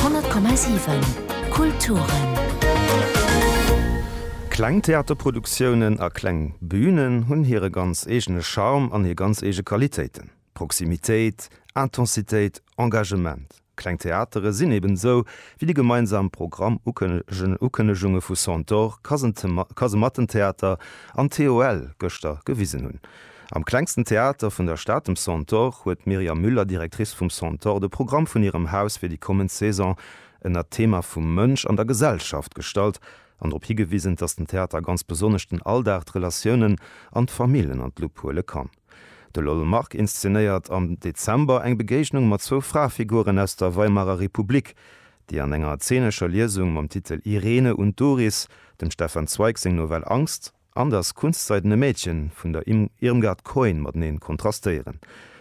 100,7 Kulturen. Kleng Theaterproduktiounen a kleng Bünen hunn hire ganz eegene Charme an hir ganz eege Qualitéiten, Proximitéit, Intensitéit, Engagement. Kleng Theatere sinn eben esou, wéi déi gemeinsam Programm-Ukënnegunge vu Centaure, Kasematten-Theater an TOL gëschter gewisen hunn. Am klengsten Theater vun der Stad, dem Centaure, huet d'Myriam Müller, Directrice vum Centaure, de Programm vun hirem Haus fir déi kommend Saison ënner d'Thema vum Mënsch an der Gesellschaft gestallt an drop higewisen, dass den Theater ganz besonnesch den Alldag, d'Relatiounen an d'Famill ënner d'Lupp huele kann. De Lol Mark inszenéiert am Dezember eng Begéignung mat zwou Frafiguren aus der Weimarer Republik, déi an enger zeenescher Liesung mam Titel Irene und Doris dem Stefan Zweig seng Novell Angst, an datt Kunstseidene Mädchen vun der Im Irmgard Coin mateneen kontrastéieren.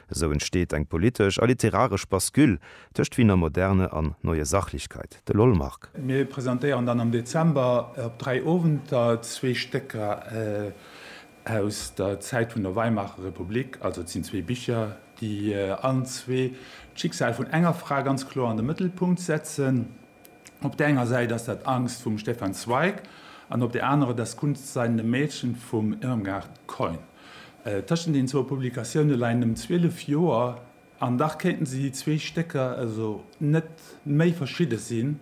Esou entsteet eng politesch a literaresch Bascule tëscht Wiener Moderne an Neue Sachlichkeit. De Lollmark. Mir presentéieren dann am Dezember op dräi Owenter zwee Stécker aus der Zäit vun der Weimarer Republik. Also et sinn zwee Bicher, déi allen zwee d'Schicksal vun enger Fra ganz kloer an de Mëttelpunkt setzen. Op där enger Säit ass dat Angst vum Stefan Zweig an op där anerer Das kunstseidene Mädchen vum Irmgard Keun. Tëschent den zwou Publikatioune leien nëmmen 12 Joer an dach kéinten se, déi zwee Stécker, net méi verschidde sinn.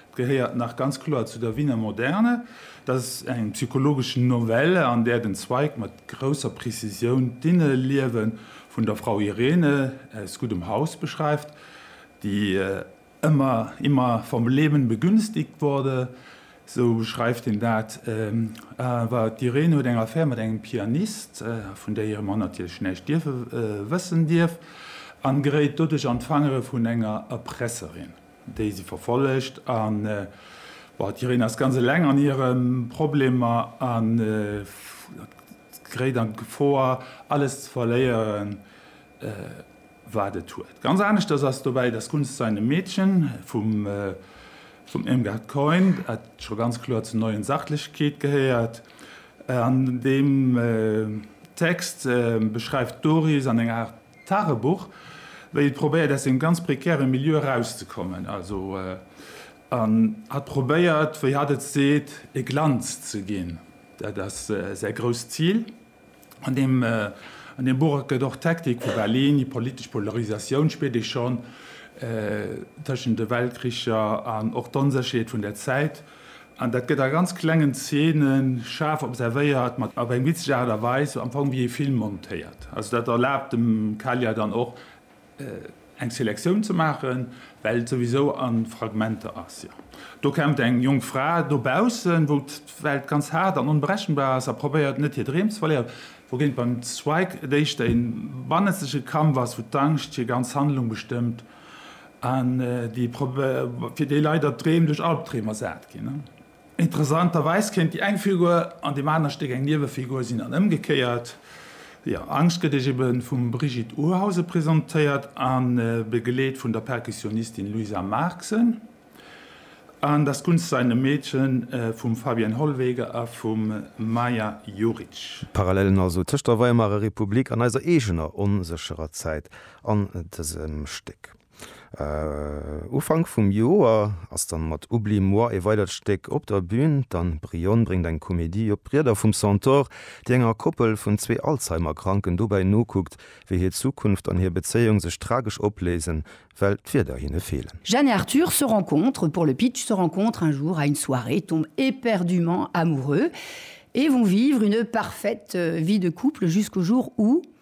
Et gehéiert nach ganz kloer zu der Wiener Moderne. Dat ass eng psychologesch Novelle, an där den Zweig mat grousser Prezisioun d'Inneliewe vun der Frau Irene aus guddem Haus beschreift, déi Ëmmer, immer vom Leben begünstigt wurde, sou beschreift hien dat. Awer d'Irene huet eng Affär mat engem Pianist, vun där hire Mann natierlech näischt dierfe wëssen dierf, an geréit doduerch an d'Fangere vun enger Erpresserin, déi si verfollegt. An d'Irene ass ganz eleng an hire Problemer an geréit an d'Gefor, alles ze verléieren. wat et huet. Ganz aneschters ass dobäi Das Kunst seinem Mädchen vum Irmgard Keun, dat scho ganz kloer zur Neuen Sachlichkeit gehéiert. An deem Text beschreift d'Doris an enger Aart Tagebuch, wéi et probéiert aus deem ganz prekäre Milieu erauszekommen. Also an hatt probéiert, wéi hatt et seet, e Glanz ze ginn, dat ass säi grousst Zil. An deem Buch gëtt och d'Hektik vu Berlin, déi politesch Polarisatioun, spiert ee schonn, tëschent de Weltkricher an och d'Onsécherheet vun der Zäit, an dat gëtt a ganz klengen Zeene schaarf observéiert, mat op eng witzeg Aart a Weis, am Fong wéi ee Film montéiert. Also dat erlaabt dem Kalia dann och, eng Selektioun ze maachen, well et souwisou a Fragmenter ass. Jo, do kennt eng jonk Fra dobaussen, wou d'Welt ganz haart an onberechenbar ass a probéiert, net hir Dreem ze verléieren, wougéint beim Zweig et éischter ee bannenzege Kampf ass, wou d'Angscht hir ganz Handlung bestëmmt an fir déi Leit, der d'Dreem duerch Albdreem ersat ginn. Interessanterweis kéint déi eng Figur an deem aner Stéck eng Niewefigur sinn an ëmgekéiert. Jo, Angscht gëtt Iech ebe vum Brigitte Urhausen presentéiert a begleet vun der Perkussionistin Luisa Marxen an Das Kunst sein e Mädchen vum Fabienne Hollwege a vum Maja Juric. Parallelen also tëscht der Weimarer Republik an eiser eegener onsécherer Zäit an dësem Stéck. Ufank vum Joer ass dann mat Oublie-moi ee weidert Stéck op der Bühn. D'Anne Bryhon bréngt eng Komedie op d'Rieder vum Centaure, déi enger Koppel vun zwee Alzheimer-Kranken dobäi nokuckt, wéi hir Zukunft an hir Bezéiung sech tragesch opléisen, well d'Wierder hinne feelen. Jeanne et Arthur se rencontrent, pour le pitch, se rencontrent un jour à une soirée, tombent éperdument amoureux et vont vivre une parfaite vie de couple jusqu'au jour où.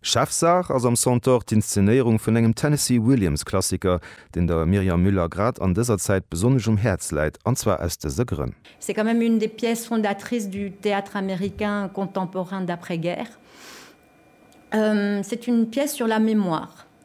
Chefsaach ass am Centaure d'Inszenéierung vun engem Tennessee Williams Klassiker, deen der Myriam Muller grad an dëser Zäit besonnesch um Häerz läit, an zwar aus dëse Grënn. C'est quand même une des pièces fondatrices du théâtre américain contemporain d'après-guerre. C'est une pièce sur la mémoire.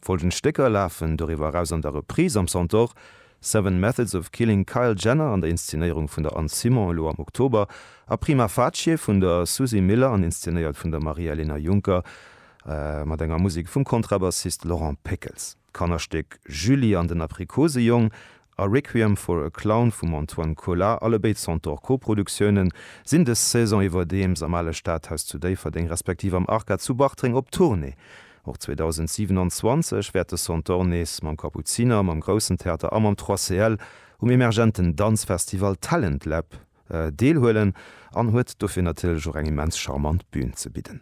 Folgend Stécker lafen doriwwer eraus an der Reprise am Centaure, Seven Methods of Killing Kyle Jenner an der Inszenéierung vun der Anne Simon elo am Oktober a Prima Facie vun der Susie Miller an inszénéiert vun der Maria-Elena Junker mat enger Musek vum Kontrabassist Laurent Péckels. D'Kannerstéck Julie an den Aprikosejong a Requiem for a Clown vum Antoine Colas, allebéid Centaure Koproduktiounen, sinn dës Saison iwwerdeems am ale Stadhaus zu Déifferdeng respektiv am Arca zu Bartreng op Tournée. Och 2027 wäert de Centaure nees mam Kapuziner, mam Groussen Theater a mam 3CL um emergenten Danzfestival Talent Lab deelhuelen an huet dofir natierlech och eng immens charmant Bün ze bidden.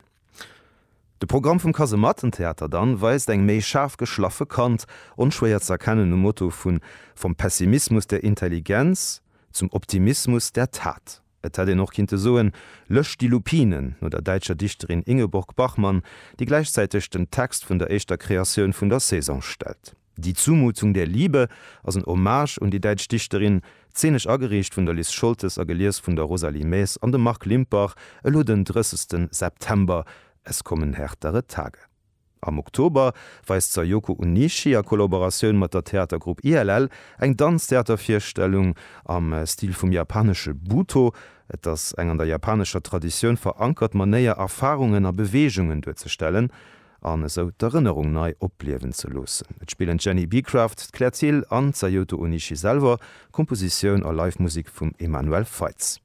De Programm vum Kasemattentheater dann weist eng méi schaarf geschlaffe Kant, onschwéier ze erkennen um Motto vun Vom Pessimismus der Intelligenz zum Optimismus der Tat. Et hätt een och kinnte soen Löscht die Lupinen no der däitscher Dichterin Ingeborg Bachmann, déi gläichzäiteg den Text vun der éischter Kreatioun vun der Saison stellt. Die Zumutung der Liebe ass en Hommage un déi däitsch Dichterin, zeenesch agereecht vun der Liz Scholtes a gelies vun der Rosalie Maes an dem Marc Limpach, elo den 30. September, Es kommen härtere Tage. Am Oktober weist d'Sayoko Onishi a Kollaboratioun mat der Theatergrupp ILL eng Danztheatervirstellung am Stil vum japanesche Buto. Et ass eng an der japanescher Traditioun verankert Manéier, Erfarungen a Beweegungen duerzestellen an esou d'Erënnerung nei opliewen ze loossen. Et spillen d'Jenny Beecraft, d'Claire Thill an d'Sayoto Onishi selwer, Kompositioun a Live-Musik vum Emmanuel Feitz.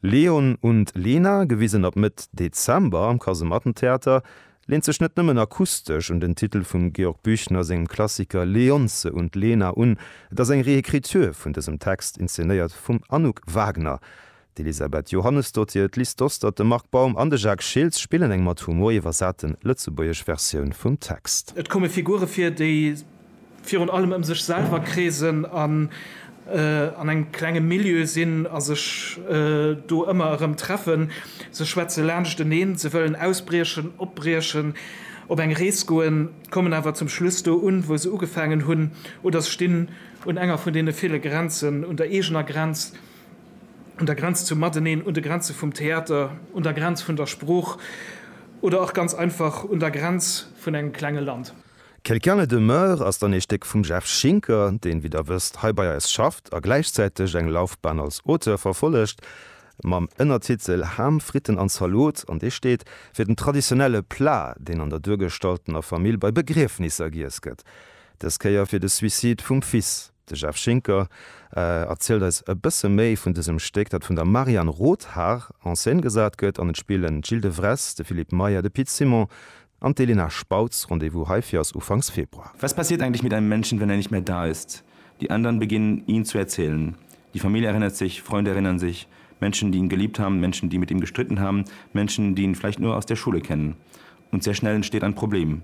Leon und Lena, gewisen ab Mëtt Dezember am Kasemattentheater, leent sech net nëmmen akustesch un den Titel vum Georg Büchner sengem Klassiker Leonce und Lena un, et ass eng Réécriture vun dësem Text, inzenéiert vum Anouk Wagner, D'Elisabeth Johannesdottir, d'Liz Dostert, de Marc Baum an de Jacques Schiltz spillen eng mat Humor iwwersate lëtzebuergesch Versioun vum Text. Et komme Figure vir, déi virun allem ëm sech selwer kreesen an an engem klenge Milieu sinn a sech do ëmmer erëm treffen. Se schwätze laanscht eneen, se wëllen ausbriechen, opbriechen, op eng Rees goen, kommen awer zum Schluss do un, wou se ugefaangen hunn, oder se stinn un enger vun deene ville Grenzen, un der eegener Grenz, un der Grenz zum Mateneen, un de Grenze vum Theater, un der Grenz vun der Sprooch oder och ganz einfach un der Grenz vun engem klenge Land. Quelqu'un ne demeure ass dann ee Stéck vum Jeff Schinker, deen, wéi der wësst, hei bei eis schafft a gläichzäiteg eng Laufbahn als Auteur verfollegt, mam Ënnertitel Ham, Fritten an Zalot, an dee steet fir den traditionelle Plat, deen an der duergestaltener Famill bei Begriefnisser giess gëtt, dës Kéier fir de Suicide vum Fils. De Jeff Schinker erzielt eis e bësse méi vun dësem Stéck, dat vun der Marianne Rothaar en scène gesat gëtt, an et spillen d'Jil de Wress, de Philippe Meyer, de Pit Simon an d'Elena Spautz. Rendez-vous heifir ass ufanks Februar. Was passiert eigentlich mit einem Menschen, wenn er nicht mehr da ist? Die anderen beginnen, ihn zu erzählen. Die Familie erinnert sich, Freunde erinnern sich, Menschen, die ihn geliebt haben, Menschen, die mit ihm gestritten haben, Menschen, die ihn vielleicht nur aus der Schule kennen. Und sehr schnell entsteht ein Problem.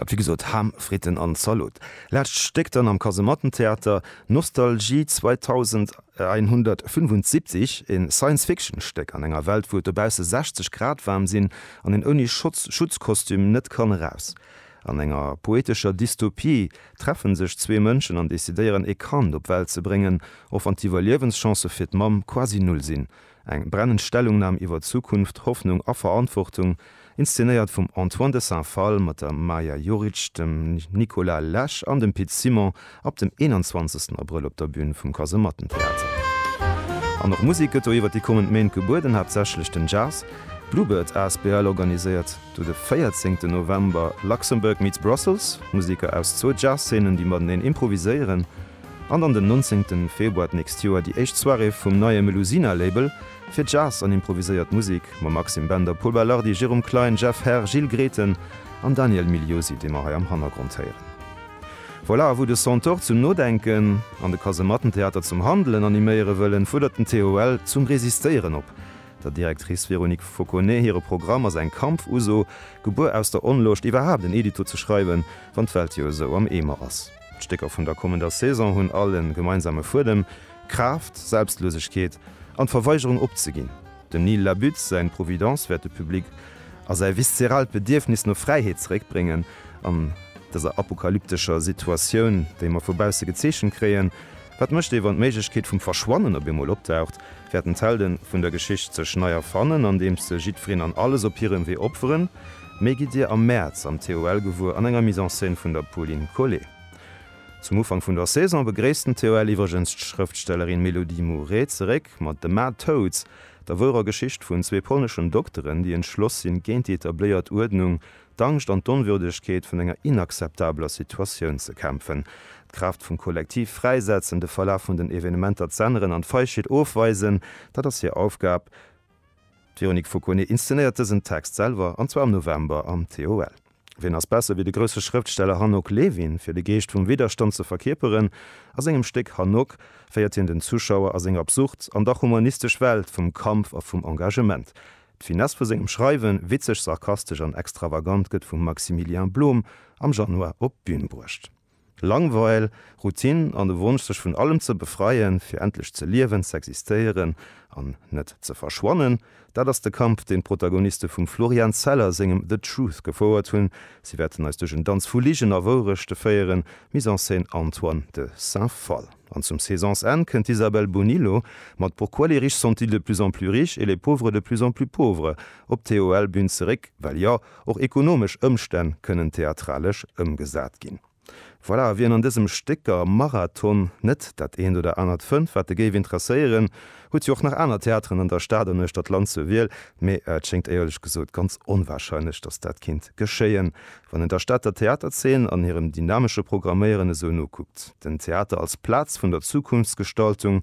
Dat wéi gesot, Ham, Fritten an Zalot. Laatst Stéck dann am Kasemattentheater, Nostalgie 2175, een Science Fiction Stéck an enger Welt wou et dobaussen 60 Grad waarm sinn an een ouni Schutzkostüm net kann eraus. An enger poetescher Dystopie treffen sech zwee Mënschen an decidéieren ee Kand op Welt ze bréngen, och wann d'Iwwerliewenschancen fir d'Mamm quasi null sinn. Eng brennend Stellungnam iwwer Zukunft, Hoffnung a Verantwortung, inszenéiert vum Antoine de Saint-Phalle mat der Maja Juric, dem Nicolas Lesch an dem Pit Simon ab dem 21 Abrëll op der Bün vum Kasemattentheater. An och Musek gëtt do iwwer déi kommend Méint gebueden, haaptsächlech den Jazz. D'Bluebird asbl organiséiert do de 14 November Luxembourg meets Brussels, Museker aus zwou Jazzzeenen, déi mateneen improviséieren. an an den 19 Februar d'nächst Joer déi éischt Soirée vum neie Melusina Label fir Jazz an improviséiert Musek mam Maxime Bender, Pol Belardi, Jérôme Klein, Jeff Herr, Gilles Grethen an Daniel Migliosi, dee mer hei am Hannergrond héieren. Voilà, à vous de Centaure zum Nodenken an de Kasemattentheater zum Handelen animéiere wëllen, fuerdert den TOL zum Resistéieren op. Der Directrice Véronique Fauconnet hire Programm ass eng Kampfuso, gebuer aus der Onloscht, iwwerhaapt en Edito ze schreiwen, wann d'Welt jo esou am Eemer ass. D'Stécker vun der kommender Saison hunn all en gemeinsame Fuedem, Kraaft, Selbstlosegkeet an d'Verweigerung opzeginn. Dem Neil Labute säin Providence wäert de Public a säi viszeraalt Bedierfnis no Fräiheet zeréckbréngen. An dëser apokalyptescher Situatioun, déi mer vu bausse gezeechent kréien, wat mécht ee wann d'Méiglechkeet vum Verschwannen op eemol opdaucht, wäerten d'Helde vun der Geschicht sech nei erfannen, andeems se jiddwereen an alles op hirem Wee opferen, Méi gitt Dir am Mäerz am TOL gewuer an enger Mise en scène vun der Pauline Collet. Zum Ufank vun der Saison begréisst den TOL iwwregens d'Schrëftstellerin Mélodie Mouret zeréck mat The Mad Toads, der wouerer Geschicht vun zwee polneschen Dokteren, déi entschloss sinn, géint déi etabléiert Uerdnung, d'Angscht an d'Onwürdegkeet vun enger inakzeptabler Situatioun ze kämpfen. D'Kraaft vum Kollektiv fräisetzen, de Verlaf vun den Evenementer z'änneren an d'Feigheet ofweisen, dat ass hir Aufgab. D'Véronique Fauconnet inszenéiert dësen Text selwer, an zwar am November am TOL. Wien ass besser wéi de grousse Schrëftsteller Hanoc Levin, fir de Geescht vum Widderstand ze verkierperen? A sengem Stéck Hanoc féiert hien den Zuschauer a seng absurd an dach humanistesch Welt vum Kampf a vum Engagement. D'Finesse vu sengem Schreiwen, witzeg, sarkastesch an extravagant, gëtt vum Maximilien Blom am Januar op d'Bün bruecht. Langweil, Routine an de Wonsch sech vun allem ze befreien, fir endlech ze liewen, z'existéieren an net ze verschwannen, dat ass de Kampf, deen d'Protagoniste vum Florian Zeller sengem The Truth gefouert hunn. Si wäerten eis duerch en Danz vu Ligen a Wourechte féieren, Mise en scène, Antoine de Saint-Phalle. An zum Saisonsenn kënnt d'Isabel Bonillo mat Pourquoi les riches sont-ils de plus en plus riches et les pauvres de plus en plus pauvres? op d'TOL-Bün zeréck, well jo, Och ekonomesch Ëmstänn kënnen theatralesch ëmgesat ginn. Voilà, wien an dësem Stécker Marathon net dat eent oder anert fënnt, wat e géif interesséieren, huet jo och nach aner Theateren an der Stad an uechter d'Land zur Wiel, mee et schéngt éierlech gesot ganz onwahrscheinlech, datt dat kinnt geschéien, wann een der Stater Theaterzeen an hirem dynamesche Programméieren esou nokuckt. Den Theater als Plaz vun der Zukunftsgestaltung,